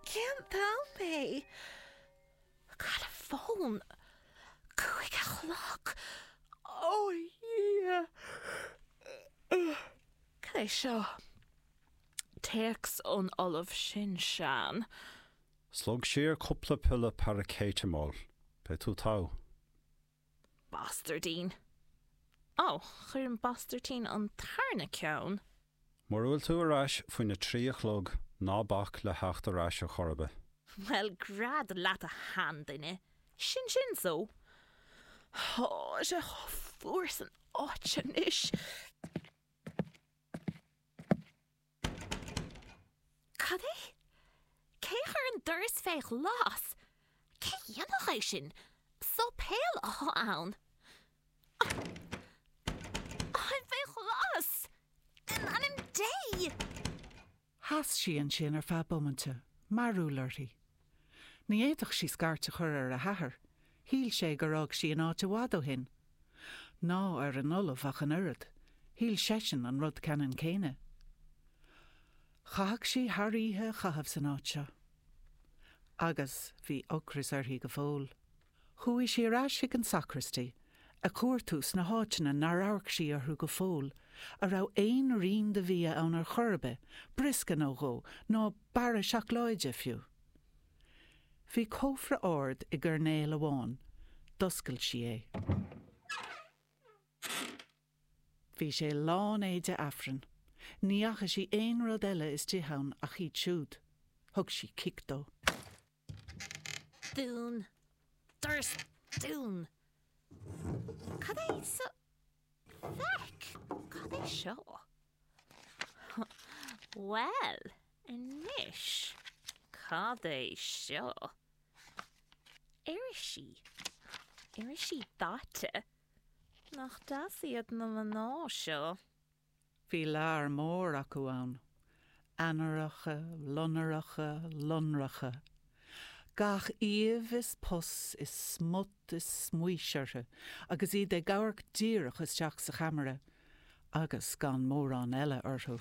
Cén t-am é? Cá'il an fón? Cúig a chlog? Ó a Dhia! Cad é seo? Téacs ón Ollamh sin Seán. Slog siar cúpla piolla paracetamol. Beidh tú togha. Bastairdín. Ó, chuir an bastairdín an tarna ceann. Mura bhfuil tú ar ais faoin a trí a chlog ná bac le teacht ar ais a chor ar bith. Bhuel, gread leat a sheanduine, sin sin so. Tá sé fuar san áit anois. Cad é? Cé chuir an doras fé ghlas? Cé dhéanfadh é sin? Séipéal atá ann. Táim faoi ghlas! In ainm Dé! Sheas sí ansin ar feadh bomainte, mearbhall uirthi. Ní fhéadfadh sí scairt a chur ar a hathair, shíl sé gur fhág sí an áit i bhfad ó shin. Ná ar an ollamh ach an oiread, shíl seisean an rud ceannann céanna. Chaithfeadh sí an oíche a chaitheamh san áit seo. Agus bhí ocras uirthi go fóill. Chuaigh sí ar ais chuig an sacraistí, ag cuartú sna háiteanna nár amharc sí orthu go fóill, a raibh aon rian de bhia ann ar chor ar bith, briosca nó dhó, nó barra seacláide, fiú. Bhí cófra ard i gcoirnéal amháin. D'oscail sí é. Bhí sé lán éide Aifrinn. Ní fhaca sí aon rud eile istigh ann ach iad siúd. Thug sí cic dó. Dún. Doras dún. Cad é sa. Feic! Cad é seo? Bhuel, anois, cad é seo? Irisí. Irisí daite. Nach deas iad na mná seo. Bhí lear mór acu ann, ainnireacha lonracha, lonracha. Gach aoibh is pus is smut is smaois orthu agus iad ag amharc díreach isteach sa cheamara, agus gan mórán eile orthu.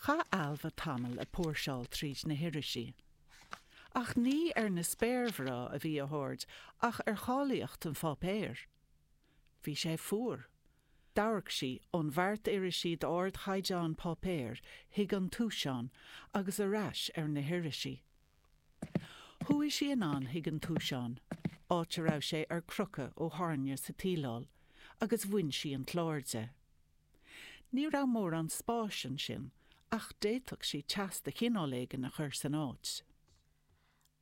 Chaith Ailbhe tamall ag póirseáil tríd na hirisí. Ach ní ar na spéirmhná a bhí a haird ach ar cháilíocht an pháipéir. Bhí sé fuar. D'amharc sí ón bheart irisí d'ardchaighdeán páipéir chuig an túiseán agus ar ais ar na hirisí. Chuaigh sí anonn chuig an túiseán, áit a raibh sé ar crochadh ó thairne sa tsíleáil, agus bhain sí an clár de. Ní raibh mórán spáis ansin, ach d'fhéadfadh sí teas de chineál éigin a chur san áit.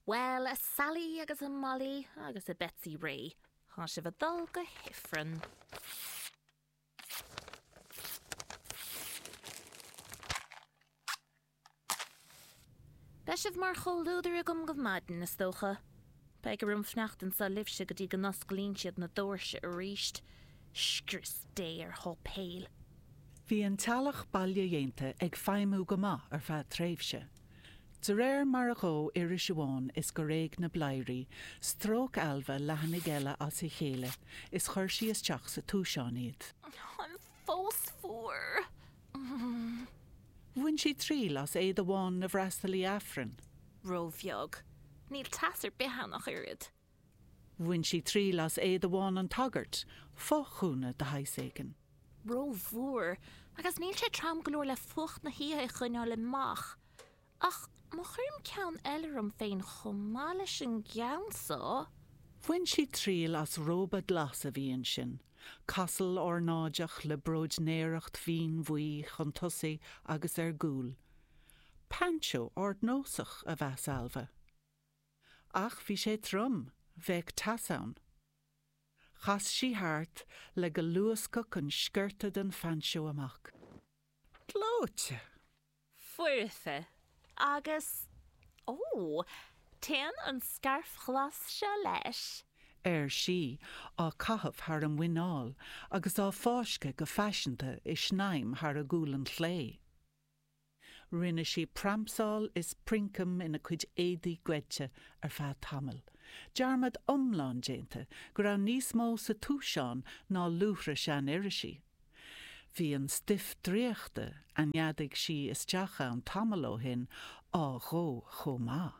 Bhuel, a Sally agus a Molly agus a Betsy Rae, tá sibh a dul go hIfreann. Beidh sibh mar chomhluadar agam go maidin, is dócha. Beidh orm fanacht anso libhse go dtí go n-osclaíonn siad na doirse aríst. Scrios Dé ar sháipéil! Bhí an teallach bailedhéanta ag feidhmiú go maith ar feadh tréimhse. De réir mar a dhóigh iris amháin is gur éag na bladhairí, stróic Ailbhe leathanaigh eile as a chéile is chuir sí isteach sa túiseán iad. Táim fós fuar. Bhain sí triail as éide bhán na bhfreastalaithe Aifrinn. Ró-bheag. Níl teas ar bith ann ach oiread. Bhain sí triail as éide bhán an tsagairt, fo-ghúna de shaghas éigin. Ró-mhór. Agus níl sé trom go leor le fuacht na hoíche a choinneáil amach. Ach má chuirim ceann eile orm féin chomh maith leis an gceann so. Bhain sí triail as róba glas a bhí ansin, casal ornáideach le bróidnéireacht mhín bhuí chun tosaigh agus ar gcúl. Painseó ardnósach, a mheas Ailbhe. Ach bhí sé trom, bheadh teas ann. Chas sí thart le go luascfadh an sciorta den phainseó amach. Gleoite! foirfe agus, ó, téann an scairf ghlas seo leis. ar sí, á caitheamh thar a muineál agus á fáisceadh go faiseanta i snaidhm thar a gualainn chlé. Rinne sí pramsáil is princeam ina cuid éadaí goidte ar feadh tamaill, dearmad iomlán déanta go raibh níos mó sa túiseán ná luaithre sean-irisí. Bhí an stuif draíochta a neadaigh sí isteach ann tamall ó shin á dhó chomh maith.